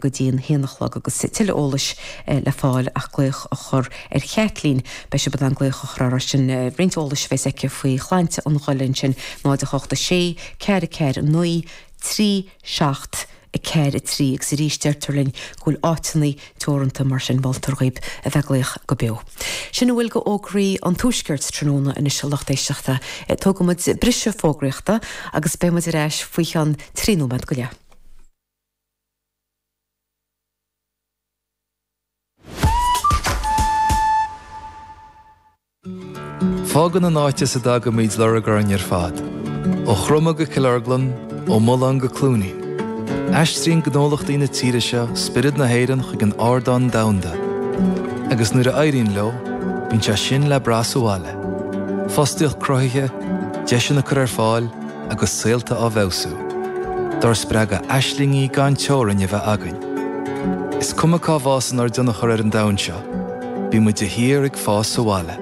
go dtí an h-aon a chlog agus tuilleadh eolais le fáil ach glaoch a chur ar Chaitlín. Beidh sibh in ann glaoch a chur uirthi sin roinnt eolais a bheas aici faoi shláinte an ghoile ansin,, 08 6 4 4 9 3 7 4 3 agus arís deirtear linn go bhfuil áiteanna teoranta mar sin moltar dhaoibh a bheith ag glaoch go beo. Sin a bhfuil d'fhógraí an Tuaiscirt tráthnóna anois a lucht éisteachta. Tógfaimid briseadh fógraíochta agus beidh muid ar ais faoi cheann trí nóiméad go leith. Fágann an áit as a dtagaimid lorg orainn ar fad, ó Chromadh go Cill Orglan, ó Mulán go Cluainín. Aistríonn gnólachtaí na tíre seo spiorad na hÉireann chuig an ardán domhanda. Agus nuair a éiríonn leo, bíonn sé sin le brath sa bhaile. Fostaíocht cruthaithe, deiseanna á gcur ar fáil, agus saolta á bhfeabhsú, dár spreagadh aislingí gan teorainn a bheith againn. Is cuma cá bhfásann ár dtionchar ar an domhan seo, bímid de shíor ag fás sa bhaile.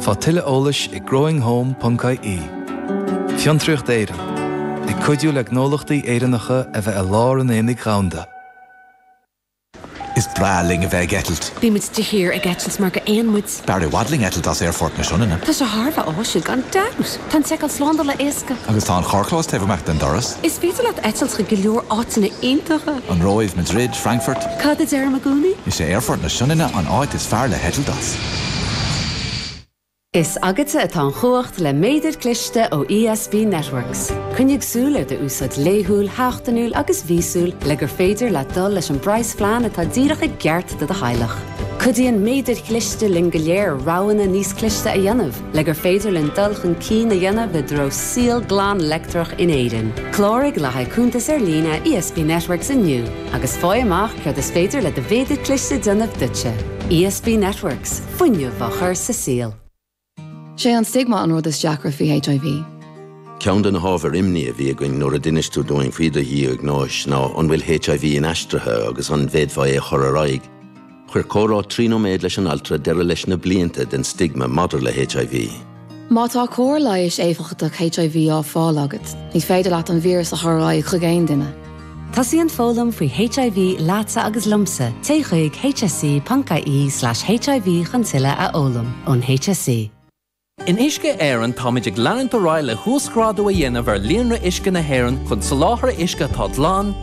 Faigh tuilleadh eolais ag growinghome ponc ie. Fiontraíocht Éireann, ag cuidiú le gnólachtaí Éireannacha a bheith i lár an aonaigh dhomhanda. Is breá linn a bheith ag eitilt. Bímid de shíor ag eitilt mar gur éin muid. B'fhearr i bhfad linn eitilt as Aerfort na Sionainne. Tá sé thar a bheith áisiúil gan dabht. Tá an tseiceáil slándála éasca. Agus tá an carrchlós taobh amuigh den doras. Is féidir leat eitilt chuig go leor áiteanna iontacha. An Róimh, Madrid, Frankfurt. Cad a deirim i gcónaí? Is é Aerfort na Sionainne an áit is fearr le heitilt as. Is agatsa atá an chumhacht le méadar cliste ó ESB Networks. Coinnigh súil ar do úsáid laethúil, sheachtainiúil agus mhíosúil le gur féidir leat dul leis an bpraghasphlean atá díreach i gceart do do theaghlach. Cuidíonn méadair chliste linn go léir roghanna níos cliste a dhéanamh le gur féidir linn dul chun cinn a dhéanamh i dtreo saol glan leictreach in Éirinn. Cláraigh le haghaidh cuntas ar líne ESB Networks inniu agus faigh amach céard is féidir le do mhéadar cliste a dhéanamh duitse. ESB Networks. fuinneamh a chur sa saol. 'Sé an stigma an rud is deacra faoi HIV. Ceann de na hábhair imní a bhí againn nuair a d'inis tú dúinn faoi do dhiagnóis ná an bhfuil HIV inaistrithe agus an bhféadfá é a chur ar aghaidh. Chuir comhrá trí nóiméad leis an altra deireadh leis na blianta den stigma maidir le HIV. Má tá cóir leighis éifeachtach HIV á fáil agat, ní féidir leat an víreas a chur ar aghaidh chuig aon duine. Tosaíonn foghlaim faoi HIV leatsa agus liomsa, téigh chuig hse.ie/hiv chun tuilleadh a fhoghlaim ón HSE. In Uisce Éireann táimid ag leanúint ar aghaidh le huasghrádú a dhéanamh ar líonra uisce na hÉireann chun soláthar uisce atá glan,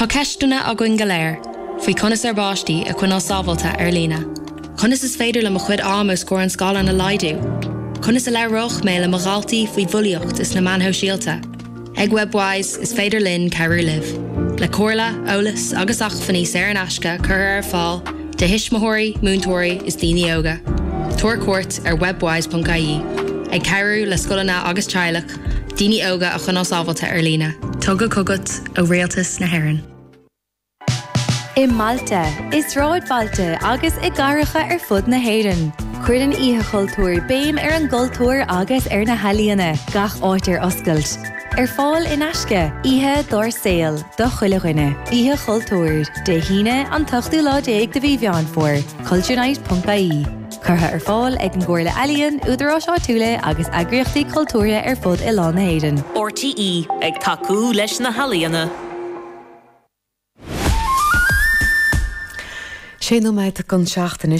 Tá ceisteanna againn go léir faoi conas ár bpáistí a choinneáil sábháilte ar líne. Conas is féidir liom a chuid ama os comhair an scáileáin a laghdú? Conas a labhróidh mé le mo dhaltaí faoi bhulaíocht is na meáin shóisialta? Ag Webwise, is féidir linn cabhrú libh, le comhairle, eolas agus acmhainní saor in aisce curtha ar fáil do thuismitheoirí, múinteoirí is daoine óga. Tabhair cuairt ar webwise.ie, ag cabhrú le scoileanna agus teaghlaigh. daoine óga a choinneáil sábháilte ar líne. Tugtha chugat ó Rialtas na hÉireann. I mbailte, i sráidbhailte agus i gcathracha ar fud na hÉireann, cuireann Oíche Chultúir béim ar an gcultúr agus ar na healaíona, gach áit ar oscailt. Ar fáil in aisce, oíche dár saol do chuile dhuine. Oíche Chultúir, Dé hAoine, an t-ochtú lá déag de mhí Mheán Fómhair, culturenight.ie. Curtha ar fáil ag an gComhairle Ealaíon, Údaráis Áitiúla agus eagraíochtaí cultúrtha ar fud oileán na hÉireann. RTÉ ag tacú leis na healaíona. Sé nóiméad chun a seacht anois.